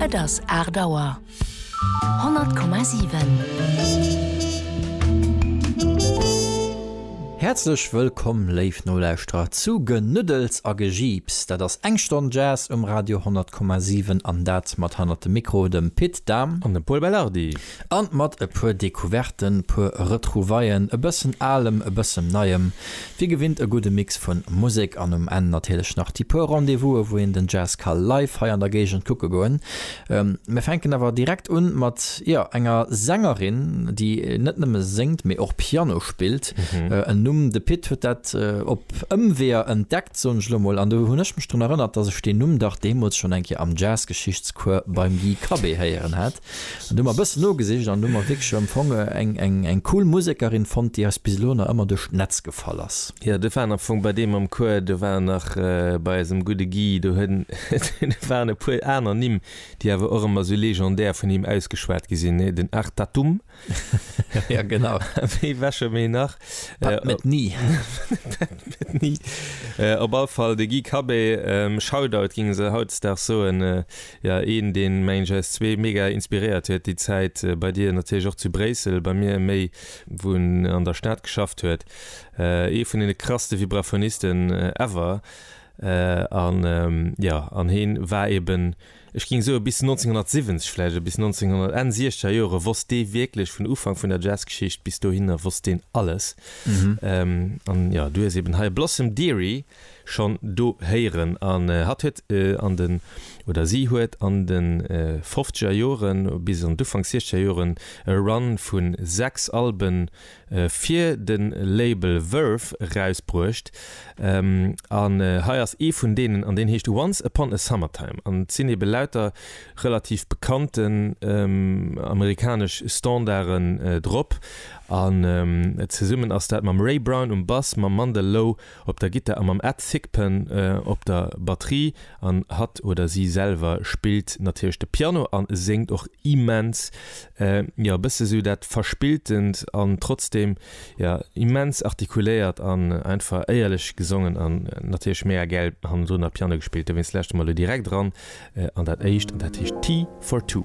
Et ass aacht Auer. 100,7. Häerzlech wëllkomm, léif Nolauschterer, zu Genuddels a Gejiips. Dat ass eng Stonn Jazz um Radio 100,7, an dat mat hannert dem Mikro dem Pit Dahm an dem Pol Belardi. An mat e puer Decouverten, puer Retrouvaillen, e bëssen Alem, e bëssem Neiem, wéi gewinnt e gudde Mix vun Musek an um Enn natierlech nach déi puer Rendez-vous'e wou een den Jazz ka live hei an der Géigend kucke goen. Mir fänken awer direkt un mat, jo, enger Sängerin, déi net nëmme séngt, mee och Piano spillt. En Numm, de Pit huet dat op Ëmweeër entdeckt, soen ech elo mol, an do hunn ech mech drun erënnert, dass ech deen Numm dach deemools schonn eng Kéier am Jazz-Geschichtscours beim Guy Cabé héieren hat. An do hu mer e bëssen nogesicht an do hu mer wierklech empfonge eng cool Musekerin fonnt, déi eis bis elo nach ëmmer duerch d'Netz gefall ass. Jo, dat war am Fong bei deem am Chouer, do war nach bei eisem gudde Guy, do waren e puer aner Nimm, déi awer och ëmmer esou legendär vun him ausgeschwat gi sinn, den Artatum, ja genau wéi wäsche méi nach net ni ni op all fall de gi kabé ähm, shoutout ging se hautdag so en äh, ja een den meng js zwee mega inspiriert huet die zeit äh, bei dir natürlich och zu bréissel bei mir méi wun an der staat geschafft huet äh, ee vun den krasste vibraphonisten äh, ever äh, an ähm, ja an heen war eben äh, ech ging soe bis 1970, vläicht e bis 1900, Enn siechzeger Jore wosst dee wierklech, vun Ufank vun der Jazzgeschicht bis dohinner wosst deen alles. An jo, du hues eben hei Blossom Dearie schonn do héieren. An hatt huet an de, oder si huet an de fofzeger Joren bis an d'Ufank siechzeger Joren e Run vu sechs Alben fir de Label Verve erausbruecht an hei ass ee vun deenen an deen heescht Once Upon A Summertime an et sinn ebe lauter relativ bekannten amerikanesch Standarden drop an zesummen ass dat mam Ray Brown um Bass, mam Mandel Lowe op der Gittar a mam Ed Thigpen op der Batterie an hatt oder si selwer spillt natierlech de Piano a séngt och immens, jo e bësse sou dat Verspilltent an trotzdem jo immens artikuléiert an einfach éierlech gesongen an natierlech mega gäil hannendrun am Piano gespillt. Dowéinst lauschte mer elo direkt eran an dat éischt an dat heescht Tea for Two.